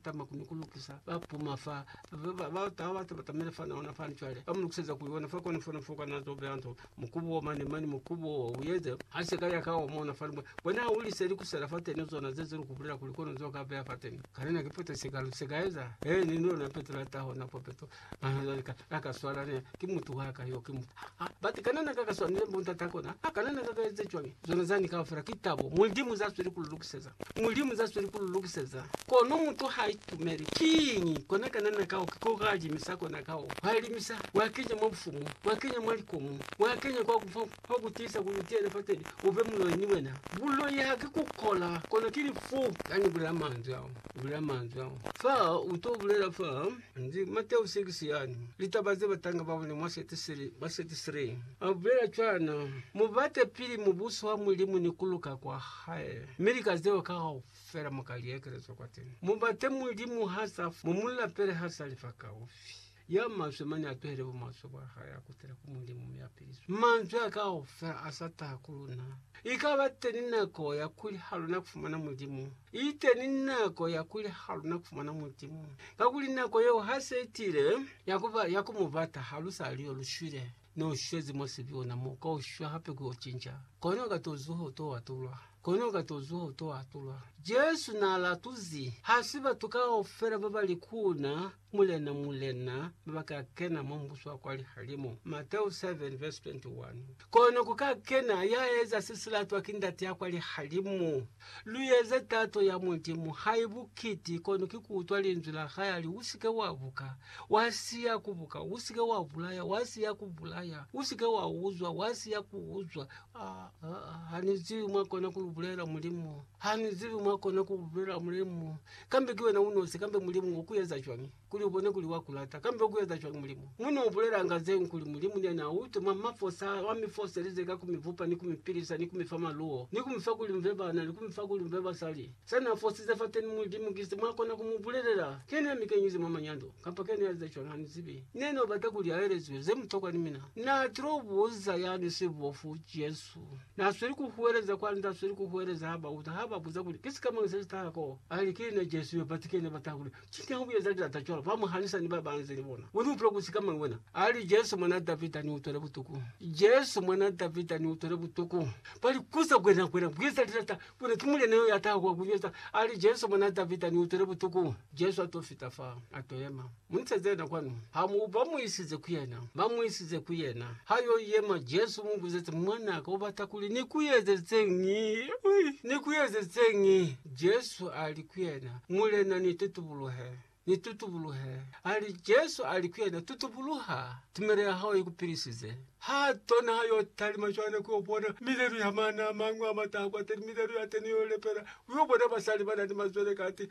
Tama kuni ku lukisa ba puma fa ba ba ta ba batamele fana ona fani cwale ba mu lukiseza ku yona fa kona fona fo kana zo beya nto mukubu o mani mani mukubu o uyeze ha se ka ya ka o mona fani bona ha uli seli kusela fa teni zona ze zilu kubulela kuli kono zo ka beya fa teni kana na kipeto se ka lu se ka eza he ni nona peto la taho na popeto Nahana lika la ka swala ne ki mutu wa ka yo ki mutu. Ha, ha, bati kana na ka ka swanile mbo ntata kona? Ha, kana na ka ka eze cwañi? Zona zani kaufela ki tabo. Mulimu za sweli ku lu lukiseza. Mulimu za sweli ku lu lukiseza. Kono mutu ha itumeli. Kiñi? Kona kana na ka oka koka limisa kona ka o. Wa limisa, wa kenya mwa bufumu, wa kenya mwa likomu, wa kenya kwa kufa, kwa ku tiisa kuli utiyele fateni, u be muloi ni wena. Buloi ha ki ku kola, kono ki lifu. Ka ni bulela manzwi ao, ni bulela manzwi ao. Fa, u to bulela fa. Ndi Mateo 6 yani. Litaba ze batanga baone mwa 33. Abulela cwana, Mubate pili mubuso wa Mulimu ni kuluka kwa hae, mi lika zeo kaufela muka liekelezwa kwateni. Mubate Mulimu ha sa fa, mumulapele ha sa lifa kaufi. Ya maswe mane atuhele bumaswe bwa hae akutele ku Mulimu mi apiliswe. Manzwi a kaufela asa taha ku luna. Ikaba teni nako ya kuli haluna kufumana Mulimu. Iteni nako ya kuli haluna kufumana Mulimu, kakuli nako yeo hase itile ya kuba ya kumubata. Halusaliyo lushwile, neushwezi mwa sibi ona mo, kaushwa hape kuyo cinca, kono katozuha uto atulwa, kono katozuha uto atulwa. Jesu naalatuzi hasi batu kaufela babali kuna, Mulena, Mulena, baba ka kena mwa Mubuso wa kwa lihalimu. Mateo 7 verse 21 Kono ku ka kena ya eza se si latwa ki Ndate ya kwa lihalimu. Lu eze tato ya Mulimu, hai bukiti, kono ki ku utwa Linzwi la hae a li, U si ke wa buka, wa siya ku buka, u si ke wa bulaya, wa siya ku bulaya, u si ke wa uzwa, wa siya ku uzwa. Ha, ha, ha, ha ni zibi mwa kona ku lu bulela, Mulimu. Ha ni zibi mwa kona ku bulela Mulimu. Kambe ki wena unosi, kambe Mulimu u ku eza cwañi kuli u bone kuli wa ku lata? Kambe u ku eza cwañi Mulimu? Mu no bulelanga zeñwi kuli Mulimu ne na u tuma mwa fosa, wa mi foselize ka ku mi bupa ni ku mi pilisa ni ku mi fa maluwo, ni ku mi fa kuli mbe bana, ni ku mi fa kuli mbe basali. Se na fosize fateni Mulimu ki se mwa kona ku mu bulelela. Ke ne mi kenyize mwa manyando, kamba ke ne a eza cwañi ha ni zibi. Ne no bata kuli a elezwe ze mutokwa ni mina. Na tilo buza ya ni sibofu, Jesu. tu. Na sweli ku huweleza kwani ta sweli ku huweleza ha ba uta ha ba buza kuli ki sikamañi se si taha koo. A li, Ki na Jesu yo, batu kene ba taha kuli, Cwini ha u eza lilata cwalo? Ba mu hanisa ni ba ba nze ni bona. U ni utula ku sikamañi wena? A li, Jesu mwan'a Davida, ni utwele butuku. Jesu mwan'a Davida, ni utwele butuku. Ba li, Ku za kwena, kwena ku eza lilata, kwena ki Mulena yo ya taha kwa ku nyweza. A li, Jesu mwan'a Davida, ni utwele butuku. Jesu a t'o fita fa, a t'o yema. Mu ise zena kwanu. Ha mu ba mu isize ku yena, ba mu isize ku yena. Ha yo yema, Jesu mu buzezi, Mwana ka, u bata kuli ni ku ezelizeñi? Ni ku ezelizeñi? Jesu a li ku yena, Mulena, ni tutubuluhe, ni tutubuluhe. A li, Jesu a li ku yena, Tutubuluha, tumelo ya hao i ku pilisize. Ha tona ha yo talima cwale ku yo bona milelu ya mana a mañwi a mata a kwateni, milelu ya teni yo lepela, u yo bona basali ba na ni mazwele kati,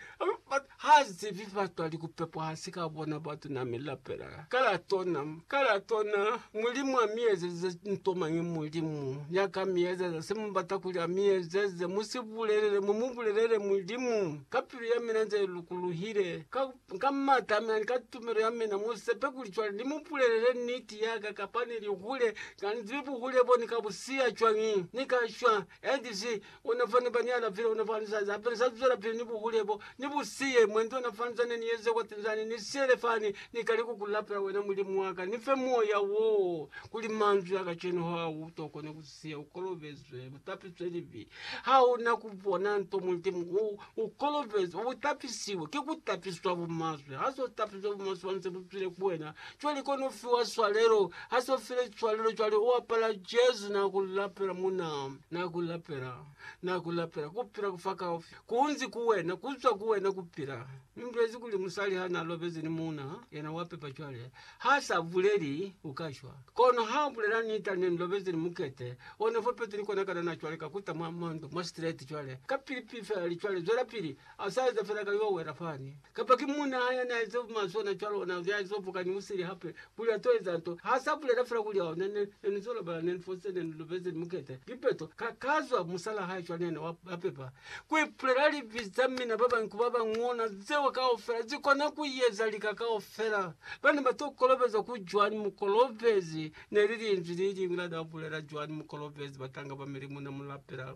ba, Ha zibi batwali kupepwa hasi ka bona batuna mi lapela ka la tona ka la tona mulimu a mi ezeze nto mañi mulimu ya ka mi ezeza se mu bata kuli a mi ezeze mu si bulelele mu mu bulelele mulimu ka pilu ya mina nze lukuluhile ka ka mata a mina ni ka tumelo ya mina mu sepe kuli cwale ni mu bulelele niti ya ka kapa ni lihule ka ni zibi buhule bo ni ka bu siya cwañi ni ka shwa and zi Ona fani bani ya lafile ona fani sa za fani sa zwela pili ni buhule bo ni bu siye mwendi ona fani zane ni yeze kwa tinzani ni siyele fani ni kale ku ku lapela wena mulimu waka ni fe moya wo kuli manzwi a kacenu ha u to kone ku siya u kolobezwe u tapiswe libi ha una ku bona nto mulimu u u kolobezwe u tapisiwe ki ku tapiswa bu maswe ha so tapiswe bu maswe fani se bu zwile ku wena cwale ki ona fiwa swalelo ha so file swalelo cwale u apala Jesu na ku lapela muna Na ku lapela, na ku lapela, kupila kufa kaufi kunzi ku wena, kuzwa ku wena kupila. Mi mulezi kuli musali ha na lobezi ni muuna, yena wa pepa cwale. Ha sa buleli, u ka shwa. Kono ha u bulela nita, Ne ni lobezi ni mukete o ne fopezwi ni kona kanana cwale ka kuta mwa, mwa ndu, mwa straight cwale, kapili pili fela li cwale, zwelapili. A sa eza fela ka yo wela fani. Kapa ki muuna hae yani a eza maswe ona cwalo, ona ya zo vuka ni musili hape, kuli a to eza nto. Ha sa bulela fela kuli, Oh, ne, ne, ne ni zo lobela, ne ni fositse, ne ni lubezi, ni mukete. Lipeto, ka, ka zwa musal'a hae cwale yani wa, wa pepa. Ku ipulela libi za mina ba bañi ku ba bañwi, ona zeo kaufela, zi kona ku yeza lika kaufela. Ba ne ba to kolobezwa ku Joani Mukolobezi, ne li linzwi le liñwi la n'a bulela Joani Mukolobezi, batanga ba milimu, na mu lapela.